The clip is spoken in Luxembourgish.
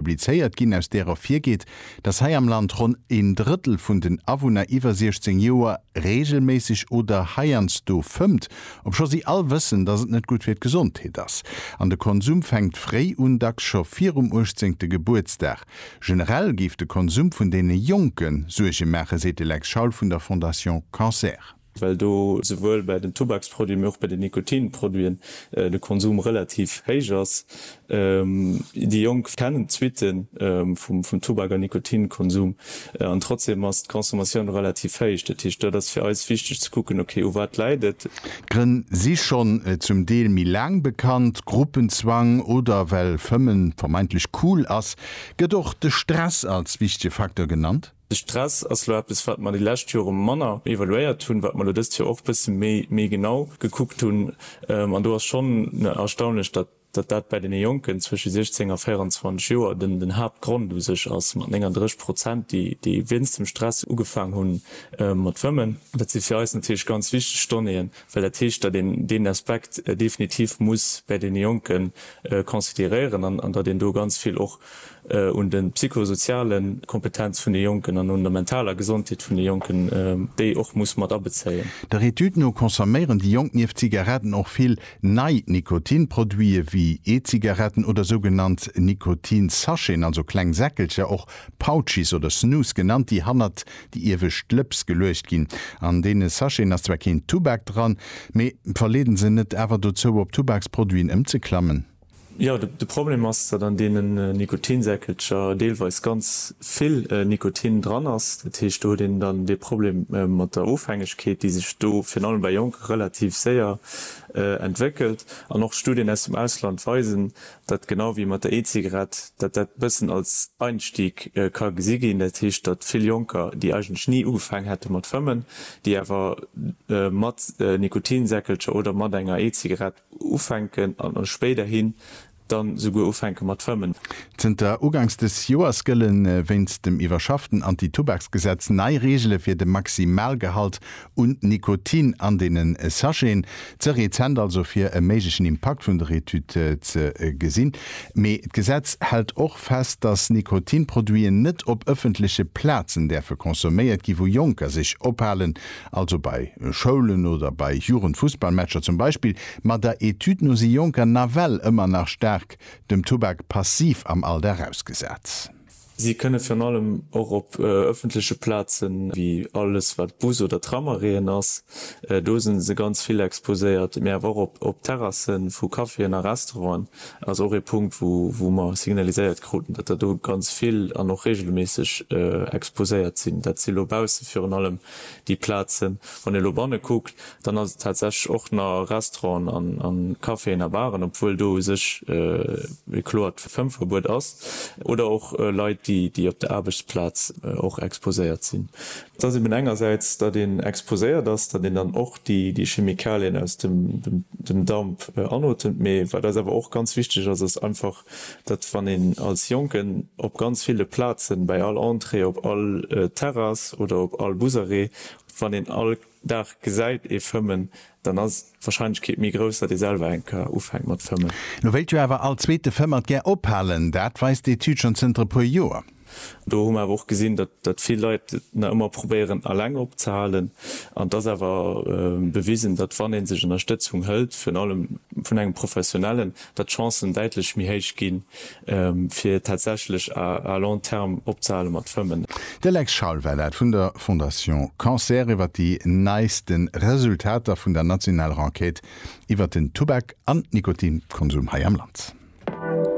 publizéiert ginn, aus där ervirgeet, datt hei am Land ronn een Drëttel vun den Awunner iwwer 16 Joer reegelméisseg oder heiansdo fëmmt, obscho si all wëssen, datt et net gutt fir d'Gesondheet ass. An de Konsum fänkt fréi un, dacks scho virum uechtzéngte Gebuertsdag. Generell géif de Konsum vun deene Jonke Suerge maachen, seet de Lex Schaul vun der Fondation Cancer. well do souwuel bei den Tubaksproduiten, mee och bei den Nikotinproduiten de Konsum relativ héich ass. Déi Jonk kennen d'Suitte vum Tubak a Nikotinkonsum an trotzdeem ass d'Consommatioun relativ héich. Dat heescht, dat ass fir eis wichteg ze kucken, okay, u wat läit et? D'Grënn si schonn zum Deel méi laang bekannt, Gruppenzwang oder well Fëmmen vermeintlech cool ass. Gëtt och de Stress als wichtege Facteur genannt? De Stress ass lo eppes wat mer déi lescht Jore manner evaluéiert hunn, wat mer lo dëst Joer och bësse méi méi genau gekuckt hunn. An do ass schonn erstaunlech, datt datt dat bäi deene Jonken zwësche 16 a 24 Joer den den Haaptgrond u sech ass, mat 39 Prozent, déi déi wéinst dem Stress ugefaang hu mat Fëmmen. Dat si fir eis natierlech ganz wichteg Donnéeën, well dat heescht, datt een deen Aspekt definitiv muss bäi deene Jonke consideréieren an datt een do ganz vill och un de psychosoziale Kompetenz vun de Jonken an un der mentaler Gesondheet vun de Jonken, déi och muss mat abezéien. Der Etüd no consomméieren déi Jonk nieft Zigaretten och vill nei Nikotinproduite wéi E-Zigaretten oder sougenannt Nikotinsacheten, also kleng Säckelcher, och Pouchies oder Snus genannt, déi hannert déi iewescht Lëps geluecht ginn. An deene Sacheten ass zwar keen Tubak dran, mee verleeden se net awer dozou, op Tubaksproduiten ëmzeklammen? Jo, de Problem ass, datt an deenen Nikotinsäckelcher deelweis ganz vill Nikotin dran ass. Dat heescht, do huet een dann dee Problem mat der Ofhängegkeet, déi sech do virun allem bei Jonke relativ séier entwéckelt. An och Studien aus dem Ausland weisen, datt genau wéi mat der E-Zigarett, datt dat e bëssen als Einstieg ka gesi ginn. Dat heescht, datt vill Jonker, déi eigentlech ni ugefaang hätte mat fëmmen, déi awer mat Nikotinsäckelcher oder mat enger E-Zigarett ufänken an spéiderhin dann esouguer ufänken mat fëmmen. Zënter ugangs dës Joers gëlle wéinst dem iwwerschafften Anti-Tubaksgesetz nei Reegele fir de Maximalgehalt un Nikotin an deene Sacheten. Ze rezent also fir e méiglechen Impakt vun der Etüd ze gesinn. Mee d'Gesetz hält och fest, datt Nikotinproduiten net op ëffentleche Plazen däerfe consomméiert gi wou Jonker sech ophalen also bei Schoulen oder bei Jugendfussballmatcher zum Beispill, ma der Etüd no si Jonker nawell ëmmer nach staark dem Tubak passiv am Alldag ausgesat. Si kënne virun allem och op ëffentleche Plazen, wéi alles wat Bus oder Tramarrêten ass, do si se ganz vill exposéiert, mee awer och op Terrasse vu Caféen a Restauranten, ass och ee Punkt wou mer signaliséiert kruten, datt der do ganz vill an och reegelméisseg exposéiert sinn. Dat si lo bausse virun allem déi Plazen. Wann ee elo banne kuckt, dann ass et tatsächlech och na Restauranten a Caféen a Baren, obwuel do u sech e kloert Fëmmverbuet ass, oder och Leit, déi op der Aarbechtsplaz och exposéiert sinn. Et ass eben engersäits, datt een exposéiert ass, datt een dann och déi Chemikalien aus dem Damp anotemt, mee wat eis awer och ganz wichteg ass, ass einfach datt wann een als Jonken op ganz ville Plazen, bäi all Entrée, op all Terrass oder op all Busarrêt, wann een all Dag gesäit ee fëmmen, dann ass d'Wahrscheinlechkeet méi grouss, datt ee selwer eng Kar ufänkt mat fëmmen. Lo wéilt jo awer all Zweete Fëmmer d'gär ophalen, dat weist d'Etüd schonn zënter e puer Joer. Do hu mer awer och gesinn, datt vill Leit et nach ëmmer probéieren eleng opzehalen. An et ass awer bewisen, datt wann ee sech Ënnerstëtzung hëlt, virun allem vun engem Professionellen, datt d'Chancen däitlech méi héich ginn, fir tatsächlech à long terme opzehale mat fëmmen. De Lex Schaul war dat vun der Fondation Cancer iwwer déi neiste Resultater vun der nationaler Enquête iwwer den Tubak an Nikotinkonsum hei am Land.